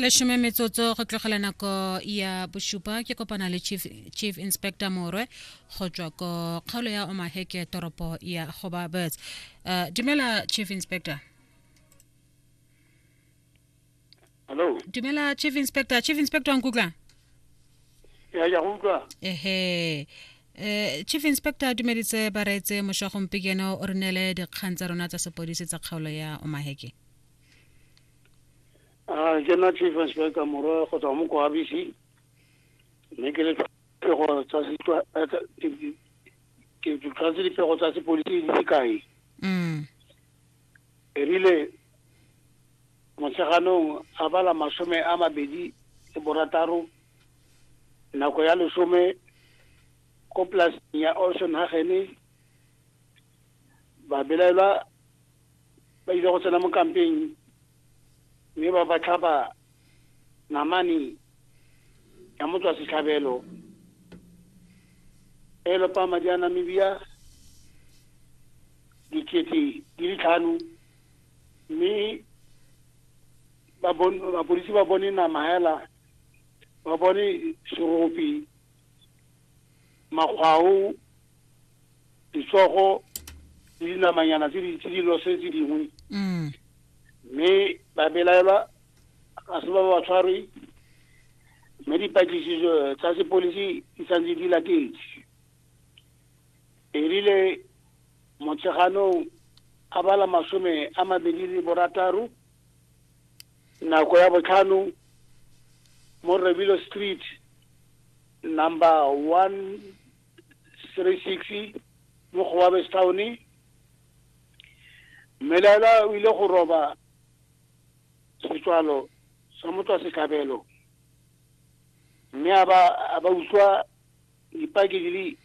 lesome metsotso go tlogela nako ya bosupa ke kopana le chief, chief inspector morwe go tswa ko kgaolo ya omaheke toropo ya goba birds uh, dumela chief inspector hello dumela chief inspector chief inspector nkutlwa ya ya utlwa ehe eh chief inspector dumeditse ba reetse mošwa gompekeno o re neele dikgang tsa rona tsa sepodisi tsa kgaolo ya omaheke a ke na chief inspector morwa go tswa mo kwa abc mme ke le pego tsa sitwa ke tshwanetse dipego tsa sepolisi di se kae mm. erile motsheganong a bala masome a mabedi le borataro nako ya lesome ko polaseng ya olson hagene babelaelwa ba ile go tsena mo kampeng mme ba ba tlhaba namane ya motswa setlhabelo e lopa madi a namibia dikete di le tlhano mme bapolisi ba bone nama hela ba bone serope makgwao ditsogo le dinamanyana tse di tse di lose tse dingwe mm. mme ba belaelwa ga se ba ba tshwarwe mme dipatlisiso tsa sepolisi di santse di latetse erile motsheganong a bala masome a mabedi le borataro nako ya botlhano mo rebilo street number one three six mo gobabestown mmelaela o ile go roba setswalo sa motswa setlhabelo mme a ba a ba utlwa dipaki di le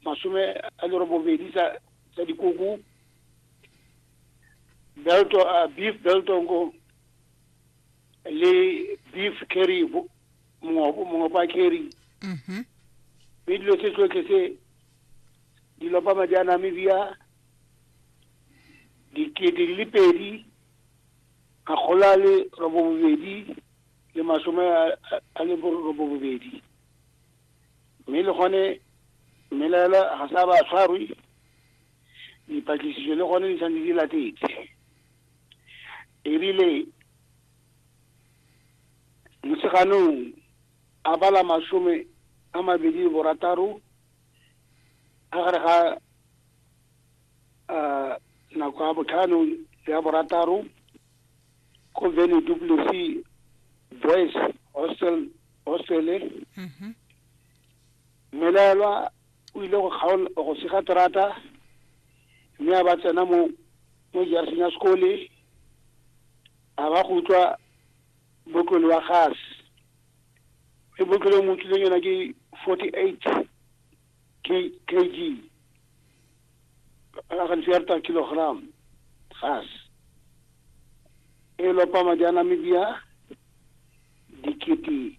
masome a lerobobedi tsa dikoko belto uh, beef belto ngo le beef carry mongwe pa carry mm-hmm. mme dilo tse tsotlhe tse dilo pa madi a namibia dikete di le pedi makgolo a le robo bobedi le masome a le robo bobedi mme le gone mmelaela ga sa ba tshwarwe dipatlisiso le gone di santse di latetse ebile moseganong a bala masome a mabedi le borataro a gare ga um nako ya botlhano le ya borataro ko vene duplesy boys hostel hostele mmelaelwa o ile go kgaola go sega terata mme a ba tsena mo mo jarseng ya sekole a ba go utlwa botlole wa gas e botlole o mo utlwileng yona ke forty eight kg a gantsi ya reta kilogram gas e lopa madi a namibia dikete